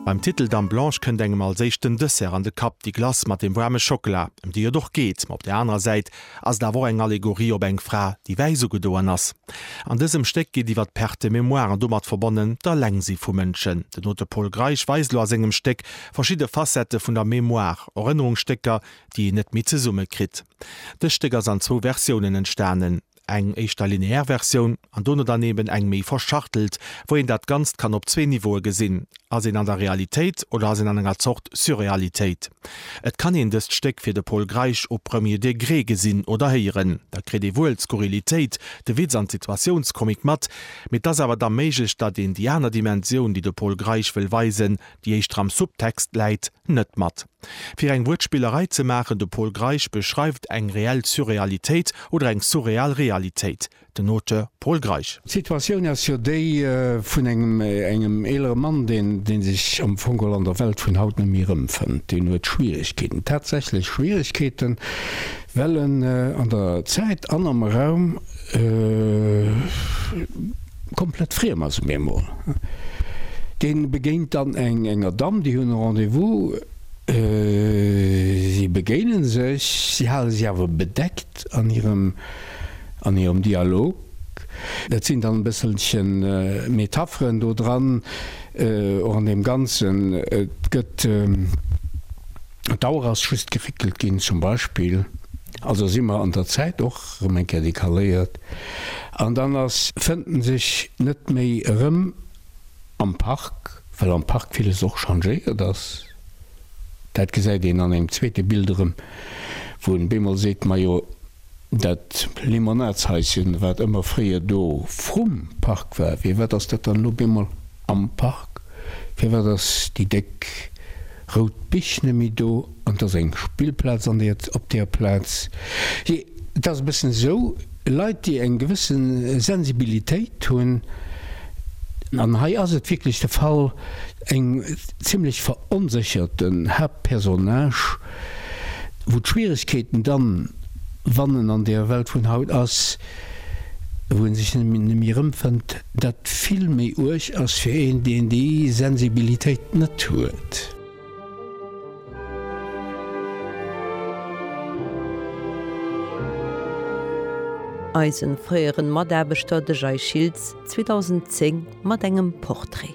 Beim Titel Dame Blanche kënnt engem als éischt den Dessert an de Kapp, déi Glace mat dem waarme Schockela, ëm déi et och geet. Ma op där anerer Säit ass et awer och eng Allegorie op eng Fra, déi wäiss ugedoen ass. An dësem Stéck geet iwwer d'Perte de mémoire an domat verbonnen d'Alengsi vu Mënschen. Den Auteur Pol Greisch weist elo a sengem Stéck verschidde Facettë vun der Mémoire, Erënnerungsstécker, déi een net méi zesummekritt. Dëst Stéck ass an zwou Versiounen entstanen. eng éischter lineär Versioun an dono dann eben eng méi verschachtelt, wou een dat Ganzt kann op zwee Niveaue gesinn, ass een an der Realitéit oder ass een an enger Zort Surrealitéit? Et kann een dëst Stéck fir de Pol Greisch au premier degré gesinn oder héieren, da kritt ee wuel d'Skurrilitéit, de Witz an d'Situatiounskomik mat, mee et ass awer da méiglech, datt een déi aner Dimensioun, déi de Pol Greisch wëll weisen, déi éischter am Subtext läit, net mat. Fir eng Wuertspillerei ze maachen, de Pol Greisch beschreift eng reell Surrealitéit oder eng surreal Realitéit, den Auteur Pol Greisch. D'Situatioun ass jo déi vun engem engem eelere Mann, deen dee sech am Fong geholl an der Welt vun haut net méi erëmfënnt. Deen huet Schwieregkeeten, tatsächlech Schwieregkeeten, Well en an der Zäit an am Raum komplett friem ass um eemol. Dee begéint dann enger Damm, déi hunn e Rendez-vous, si begéine sech, si hale si awer bedeckt an hirem Dialog. Et sinn dann e bësselche Metapheren do dran, och an deem Ganzen. Et gëtt. D'Auer ass just geréckelt ginn, zum Beispill. Also si mer an der Zäit och erëm eng Kéier decaléiert. An dann ass, fënnt en sech net méi erëm am Park, well am Park villes och changéiert ass. Dat gesäit een an engem zweete Bild erëm, wou en op eemol seet, Majo, Dat Limonadshaischen, wat ëmmer fréier do vrum Park war, firwat ass dat dann elo op eemol am Park? Firwat ass déi déck rout Bich net méi do an et ass eng Spillplaz an der, op där Plaz? Jee, et ass e bëssen esou, Leit, déi eng gewësse Sensibilitéit hunn, an hei ass et wierklech de Fall, eng zimlech veronsécherten Haaptpersonnage, Wou d'Schwieregkeeten dann, wann en an der Welt vun haut ass, wou en sech nemmi erëmfënnt, dat vill méi uerg ass fir een, deen déi Sensibilitéit net huet. Eisen fréieren Mataarbechter, de Jay Schiltz, 2010 mat engem Portrait.